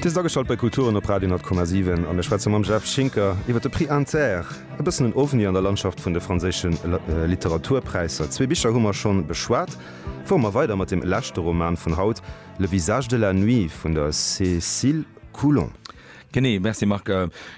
Dir sidd ageschalt bei Kulturen op Radio 10,7 a mir schwätze mam Jeff Schinker iwwer de Prix Inter. E bëssen en Ovni an der Landschaft vun de franséische Literaturpräisser. Zwee Bicher hu mer schonn beschwat. Fuere mer weider mat dem leschte Roman vun haut, Le visage de la nuit vun der Cécile Coulon. Genee, merci Marc.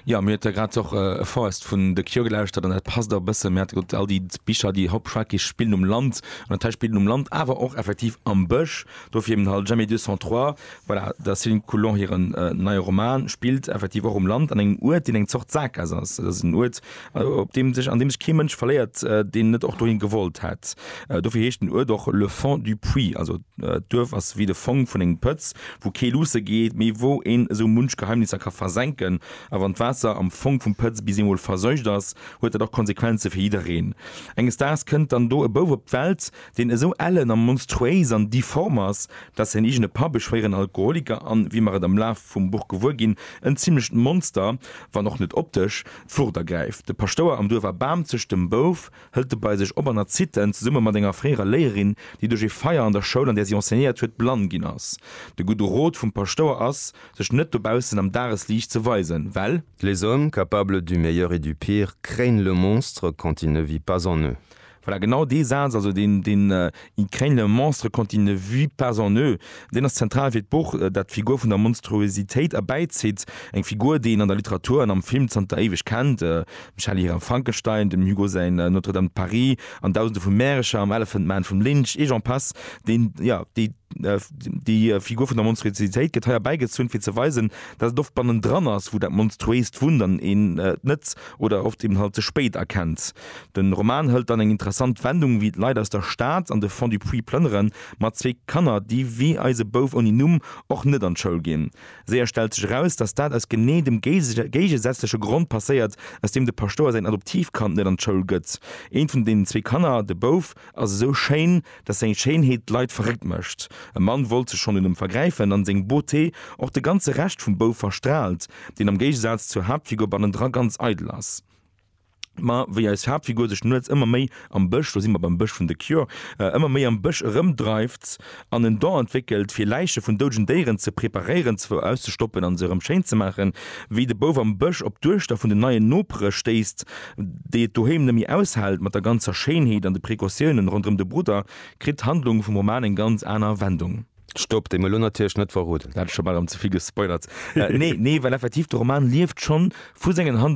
Jo, mir huet der grad och e Forest vun The Cure gelauschtert an dat passt och e bëssen. Mir hate gesot, all déi Bicher, déi Hop Frackies spillen um Land an dat hei spillt um Land, awer och effektiv am Bësch. Do fir eben halt Jamais 203, voilà, der Céline Coulon hiren neie Roman spillt effektiv och um Land an engem Uert, deen eng Zort Sackgass ass. Dat ass en Uert, op deem sech, an deem sech kee Mënsch verléiert, deen net och dohin gewollt hätt. Dofir heescht den Uert och le fond du puits, also d'Duerf ass wéi de Fong vun engem Pëtz, wou kee luusse geet, mee wou een esou munch Geheimnisser ka versenken. A wann d'Waasser am Fong vum Pëtz bis eemol verseucht ass, huet dat och Konsequenze fir jiddereen. Enges Daags kënnt dann do e Bouf op d'Welt, deen esou ellen a monstruéis an difform ass, dass säin eegene Papp, e schwéieren Alkoholiker an, wéi mer et am Laf vum Buch gewuer ginn, en zimlecht Monster, wann och net optesch, D'Wuert ergräift de Paschtouer am Duerf a Bamzeg, dem Bouf hëlt e bei sech op an erzit en, zesumme mat enger fréierer Léierin, déi duerch ee Feier an der Schoul, an där si enseignéiert huet, blann ginn ass. De gudde Rot vum Paschtouer ass, sech net dobaussen am Dagesliicht ze weisen, well. Les hommes, capables du meilleur et du pire, craignent le monstre quand il ne vit pas en eux. Voilà, genau dee Saz, also deen, deen Ils craignent le monstre quand il ne vit pas en eux, deen ass zentral fir d'Buch, dat d'Figur vun der Monstruositéit erbäizitt, eng Figur, déi een an der Literatur an am Film zanter éiweg kennt, dem Shelley hiren Frankenstein, dem Hugo säin Notre-Dame de Paris an Dausende vu Märecher, am Elephant Man vum Lynch, et j'en passe. Deen, jo, déi, déi Figur vun der Monstruositéit gëtt hei erbäigezunn, fir ze weisen, dat et oft bannendran ass, wou dat Monstruéist wunnt an een et net oder oft eben halt ze spéit erkennt. De Roman hëlt dann eng interessant Wendung, wéi d'Leit aus der Stad an de Fond du Puits plënneren, mat zwee Kanner, déi wéi eise Bouf ouni Numm och net an d'Schoul ginn. Séier stellt sech eraus, dass dat aus genee dem géigesätzleche Grond passéiert, aus deem de Paschtouer säin Adoptivkand net an d'Schoul gëtt. Eent vun deenen zwee Kanner, de Bouf, ass esou schéin, dass seng Schéinheet d'Leit verréckt mécht. E Mann wollt sech schonn un em vergräifen, an seng Beauté och de ganze Rescht vum Bouf verstraalt, deen am Géigesaz zur Haaptfigur bannendra ganz eidel ass. Ma wéi eis Haaptfigur sech nuets ëmmer méi am Bësch, do si mer beim Bësch vun The Cure, ëmmer méi am Bësch erëmdreift an en Don entwéckelt, fir Läiche vun doudegen Déieren ze preparéieren, auszestoppen a se erëm schéin ze maachen, wéi de Bouf am Bësch op d'Duechter vun den neien Nopere stéisst, déi et doheem net méi aushält mat der ganzer Schéinheet an de Precautiounen ronderëm de Brudder, kritt d'Handlung vum Roman eng ganz aner Wendung. Stopp! Déi mer elo natierlech net verroden. Dat ass scho bal erëm ze vill gespoilert. Nee, nee, well effektiv de Roman lieft schonn vu sengen Handlungen.